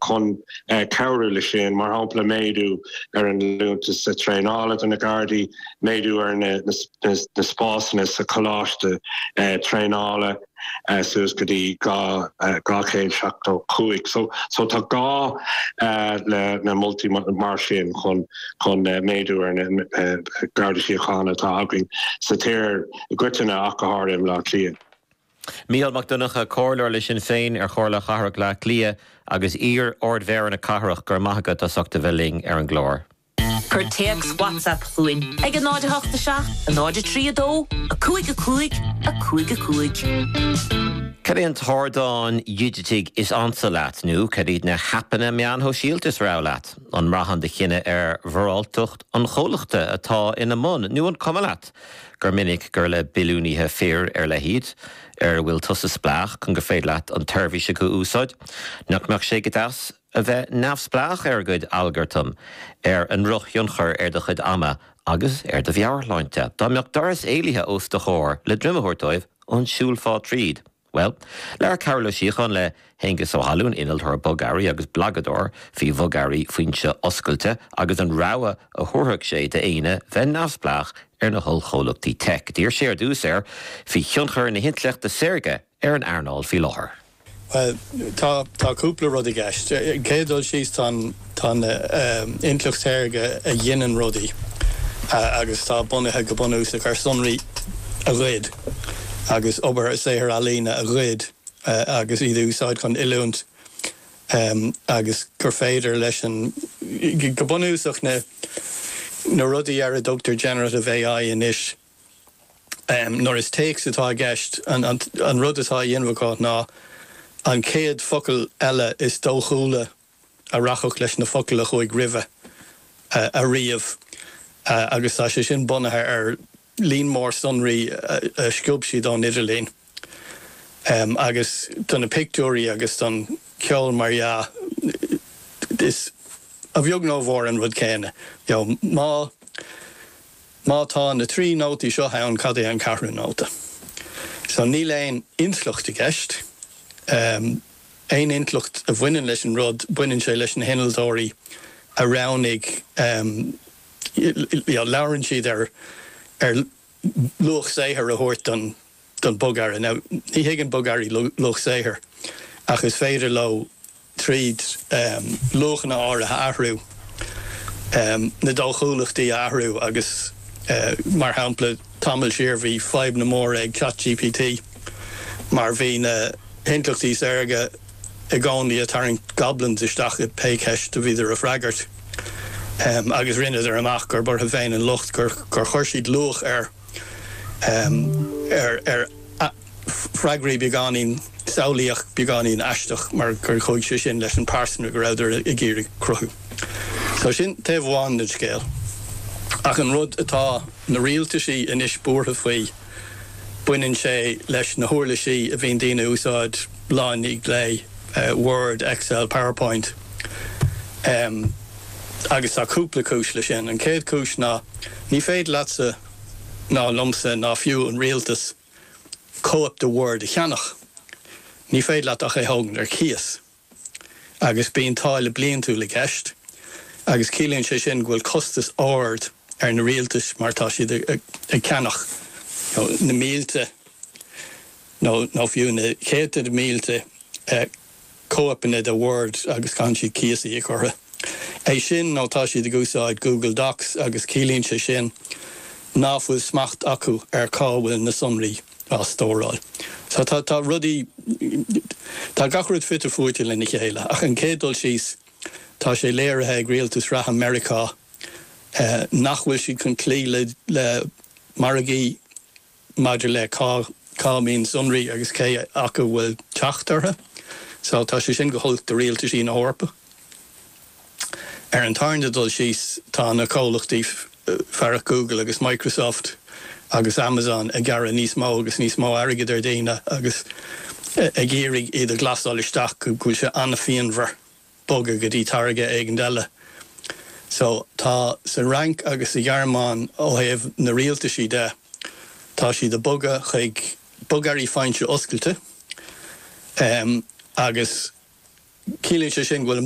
Chun cabhrú leis sin, mar shampla, méadú ar an liúntas traenála do na Gardaí, méadú ar na spásanna sa choláiste traenála suas go dtí 275. So tá gá le na moltaí mar sin chun méadú ar na Gardaí Síochána atá againn sa tír i gcoitinne ach go háirithe i mBleá Cliath. Mícheál Mac Donncha, Comhairleoir le Sinn Féin ar Chomhairle Cathrach Bhleá Cliath agus iar-Ardmhéara na cathrach, go raibh maith agat as ucht a bheith linn ar an gclár. Cuir téacs WhatsApp chugainn ag 08 7 0 3 2 5 5 5 5. Cad é an t-ardán digiteach is ansa leat nó cad iad na haipeanna meáin shóisialta is rogha leat? An mbraitheann do chinneadh ar mhoráltacht an chomhlachta atá ina mbun nó an cuma leat gur minic gur le billiúnaithe fir ar leith iad ar a bhfuil tusa spleách chun gur féidir leat an tseirbhís acu a úsáid, nach mbeadh sé go deas a bheith neamhspleách ar a gcuid algartam, ar a ndrochthionchar ar do chuid ama agus ar do mheabhairshláinte? Dá mbeadh doras éalaithe os do chomhair le droim a thabhairt dóibh, an siúlfá tríd? Bhuel, labhair Cearbhall Ó Síocháin le hAonghus Ó hAlmhain, innealtóir bogearraí agus blagadóir faoi bhogearraí foinse oscailte agus an rogha a thabharfadh sé d'éinne bheith neamhspleách ar na hollchomhlachtaí teic. D'fhiafraigh sé ar dtús air faoi thionchar na hintleachta saorga ar an earnáil faoi láthair. Bhuel, tá cúpla rud i gceist. Chéad dul síos, tá an. Tá an intleacht shaorga a ghineann rudaí agus atá bunaithe go bunúsach ar sonraí a ghoid agus obair saothar ealaíne a ghoid agus iad a úsáid chun oiliúint agus gur féidir leis an go bunúsach na rudaí ar a dtugtar generative AI anois nuair is téacs atá i gceist an rud atá á dhéanamh acu ná an chéad focal eile is dóchúla a a rachadh leis na focail a chuaigh roimhe a ríomh agus tá sé sin bunaithe ar líon mór sonraí a sciob siad ón idirlíon agus do na pictiúirí agus don cheol mar dhea is a bheag nó a mhór an rud céanna you know má má tá na trí nótaí seo ann cad é an ceathrú nóta so níl aon intleacht i gceist. aon intleacht a bhaineann leis an rud, baineann sé leis na hinnealtóirí a roghnaigh, you know, labhrann siad ar luach saothair a thabhairt don bogearra. Now, ní thuigeann bogearraí luach saothair ach is féidir leo, tríd luachanna áirithe a athrú, na dóchúlachtaí a athrú agus, mar shampla, Tamall siar bhí fadhb an-mhór ag ChatGPT mar bhí na hintleachtaí saorga i gcónaí ag tarraingt goblins isteach i pé ceist a bhíodar ag freagairt agus rinneadar amach gurb orthu féin an locht gur chuir siad luach ar Freagraí beagáinín samhlaíoch beagáinín aisteach mar gur chuaigh sé sin leis an pearsanra go rabhadar ag iarraidh cruthú. So sin taobh amháin den scéal. Ach an rud atá na rialtaisí anois buartha faoi, baineann sé leis na huirlisí a bhíonn daoine ag úsáid lá i ndiaidh lae, Word, Excel, Powerpoint. Agus tá cúpla cúis leis sin. An chéad cúis ná ní féidir leatsa ná liomsa ná fiú an rialtas, cóip de Word a cheannach, ní féidir leat ach é a thógaint ar cíos. Agus bíonn táille bliantúil i gceist, agus ciallaíonn sé sin go bhfuil costas ard ar na rialtais mar tá siad ag ceannach na mílte nó fiú na céadta de mhílte cóipeanna de Word agus caitheann siad cíos a íoc orthu. É sin nó tá siad ag úsáid Google Docs agus ciallaíonn sé sin ná fuil smacht acu ar cá bhfuil na sonraí á stóráil. So tá rudaí, tá gach rud fite fuaite lena chéile. Ach ar an gcéad dul síos, tá sé léirithe ag rialtas reatha Meiriceá nach bhfuil siad chun cloí le margaí, maidir le cá mbíonn sonraí agus cé acu bhfuil teacht orthu. So tá sé sin go holc do rialtaisí na hEorpa. Ar an tarna dul síos tá na comhlachtaí fearacht Google agus Microsoft agus Amazon ag gearradh níos mó agus níos mó airgid ar daoine agus ag iarraidh iad a ghlasáil isteach go bhfuil sé an-phianmhar. bogadh go dtí táirge éigin eile. So, tá sa Fhrainc agus sa Ghearmáin, ó thaobh na rialtaisí de, tá siad ag bogadh chuig bogearraí foinse-oscailte, em, agus ciallaíonn sé sin go bhfuil an.